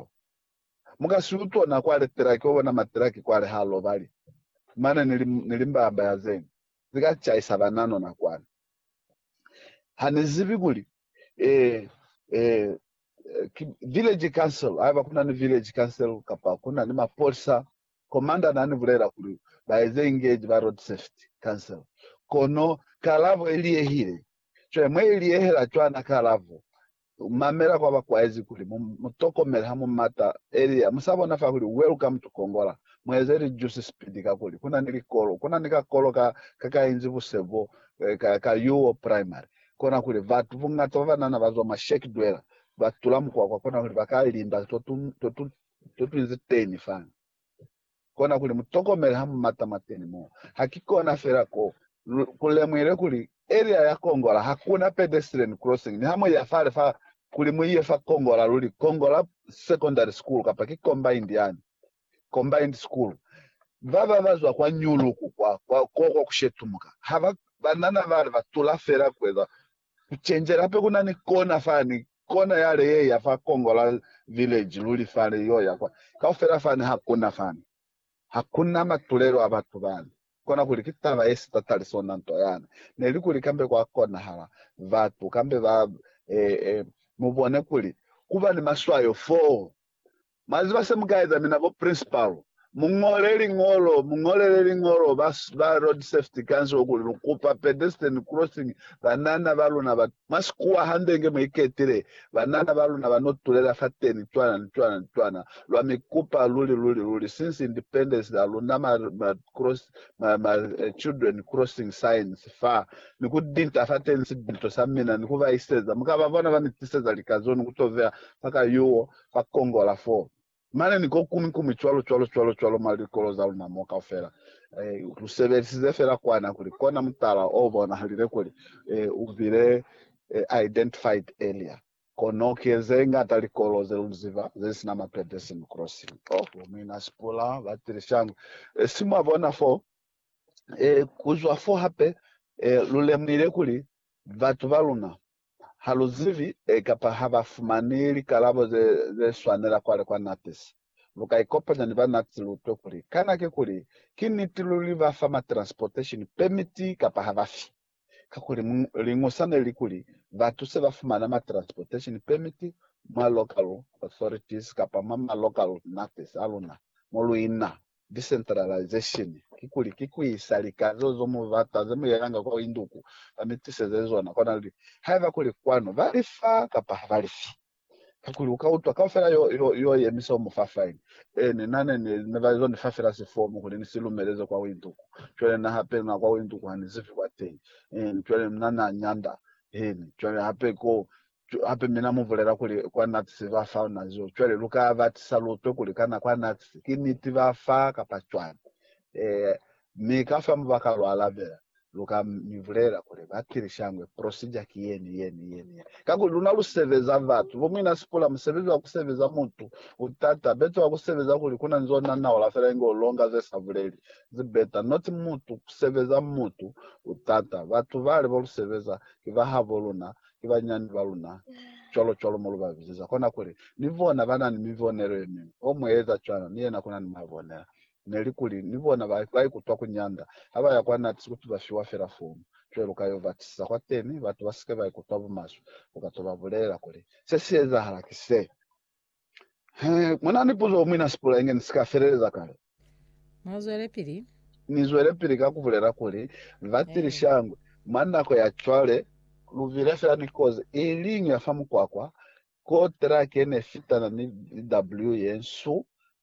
Kristo. Mu ka si utwa na kwale tilaki oba na matilaki kwale ha lobali, mane ni, ni limbaya-mbaya zeni zi ka caisa banano na kwale. Ha ni zibi kuli, eh, eh, ki village council, haiba kuna ni village council kapa kuna ni mapolisa, commander na ni bulela kuli ba eze engage ba road safety council. Kono kalabo i liehile. Cwale mwe i liehela cwana kalabo, Mamela kwa ba kwaezi kuli mu mu tokomele ha mu mata Elia. Mu sa bona fa kuli uwe lu ka mu tukongola. Mu eze lijusi sipidi kakuli ku na ni likolo. Ku na ni kakolo ka ka ka inzi buse bo ka ka Yuo Primary. Kona kuli batu bungata ba banana ba zwa mwa Shek Dweller ba tula mukwakwa kona kuli ba ka limba to tu to tu to tu inzi teni fani. kona kuli mu tokomele ha mu mata mwateni moo. Ha ki kona fela ko lu lemuhile kuli Elia ya kongola ha ku na pedestrian crossing niha mu ya fale fa kuli mu ye fa kongola luli, kongola secondary school kapa ki combined yani, combined school. Baba ba zwa kwa Nyuluku kwa, kwa, kwa, kwa ku shetumuka. Ha ba, banana bale ba tula fela ku eza Kucenjela hape kuna ni kona fani, kona yale yeya fa Kongola Village luli fale yoya kwa. Kaufela fani hakuna fani. Hakuna matulelo a batu bani. Kona kuli ki taba ye sitatali sona nto yani. Neli kuli kambe kwa konahala batu kambe ba, e, e, mubone kuli kuba ni maswayo foo, Mwa ziba se mu ka eza, mina bo principal, mu ñole liñolo, mu ñolele liñolo ba, ba Road Safety Council kuli lu kupa pedestrian crossing, banana ba luna ba, mwa sikuwa hande nge mu iketile, banana ba luna ba no tulela fateni cwana ni cwana ni cwana. Lwa mi kupa luli, luli, luli, since independence la luna ma, ma cross, ma, ma children crossing signs fa, ni ku dinta fateni sibinto sa mina, ni ku ba iseza. Mu ka ba bona ba ni tiseza likazo ni ku to veha fa ka yuwo, ka kongola fo mane ni ko kuñwi kuñwi cwalo cwalo cwalo cwalo mwa likolo za luna mo kaufela. E, lu sebelisize fela kwana kuli kona mutala o bonahalile kuli e, u bile e, identified earlier. Kono ki ze ñata likolo ze lu ziba ze sina ma pedestrian crossing. Oh, bo muina Sipula ba tili shangwe. E, si mwa bona fo, e, ku zwa fo hape, e, lu lemuhile kuli batu ba luna Ha lu zibi ee kapa ha ba fumani likalabo ze, ze swanela kwale kwa NATS, lu ka ikopanya ni ba NATS lu utwe kuli kana kikuli ki niti luli ba fa ma transportation permit kapa ha ba fi. Kakuli liñwi sa ne li kuli batu se ba fumana ma transportation permit mwa local authorities kapa mwa ma local NATS a luna mo lu ina. Decentralization kikuli ki kuisa lika zeo ze mu bata ze mu yelanga kwa induku ba mi tiseze zona kona luli haiba kuli kwanu ba li fa kapa ha ba li fi. Kakuli uka utwa kaufela yo, yo, yo yemisa umu fa fine. E, ni na ne, ne, ne ba zo ni fa fela sifomu kuli ni si lumeleze kwa induku. Cwale na hape na kwa induku ha ni zibi kwateñi. Eeni, cwale mna na nyanda. Eeni, cwale hape ko Hape mina mu bulela kuli kwa Nazi ba fa luna zibo. Cwale lu ka ba tisa lutwe kuli kana kwa Nazi ki niti ba fa kapa cwani. Ee. Mi ka fa mo ba ka lu alabela, lu ka mi bulela kuli, Bakili shangwe, procedure ki yeni, yeni, yeni, yeni. Kakuli luna lu sebeza batu. Bo muina Sipula, musebezi wa ku sebeza mutu u tata. Beta wa ku sebeza kuli kuna nzo nanaula fela inge u longa ze sa buleli. Zi beta. Not mutu, ku sebeza mutu u tata. Batu bale bo lu sebeza, ki ba habo luna. ki banyinyani ba luna, cwalo-cwalo mo lu ba bizeza. Kona kuli, Ni bona ba na ni mibonelo ye miñwi. O mu eza cwana, ni yena kuna ni mwa bonela. Neli kuli, Ni bona ba, ba ikutwa ku nyanda, ha ba ya kwa NATS kuti ba fiwa fela fomu, cwale lu ka yo ba tisiza kwateni, batu ba si ke ba ikutwa bumaswe. Lu ka to ba bulelela kuli, Se si ezahala ki se. He, muna ni puzo umwi na sipula inge ni si ka feleleza kale. Mu zwelepili. Ni zwelepili ka ku bulela kuli, Batili shangwe, mwa nako ya cwale, lu bile fela ni kozi i liñwi ya fa mukwakwa, ko trake ne fitana ni VW ye nsu,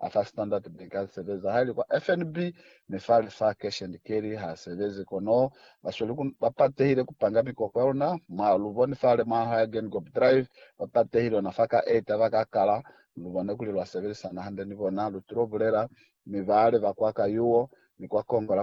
a fa Standard Bank a sebeza haili kwa FNB mi fale fa Cash and Carry ha sebezi. Kono ba sweli ku ba patehile ku panga mikoko ya luna. Mwa lu boni fale mwa ha ya Geingob Drive ba patehile ona fa ka eta ba ka kala. Lu bone kuli lwa sebelisana hande ni bona, lu tulo bulela, mi bale ba kwa Kayuo ni kwa Kongola kuli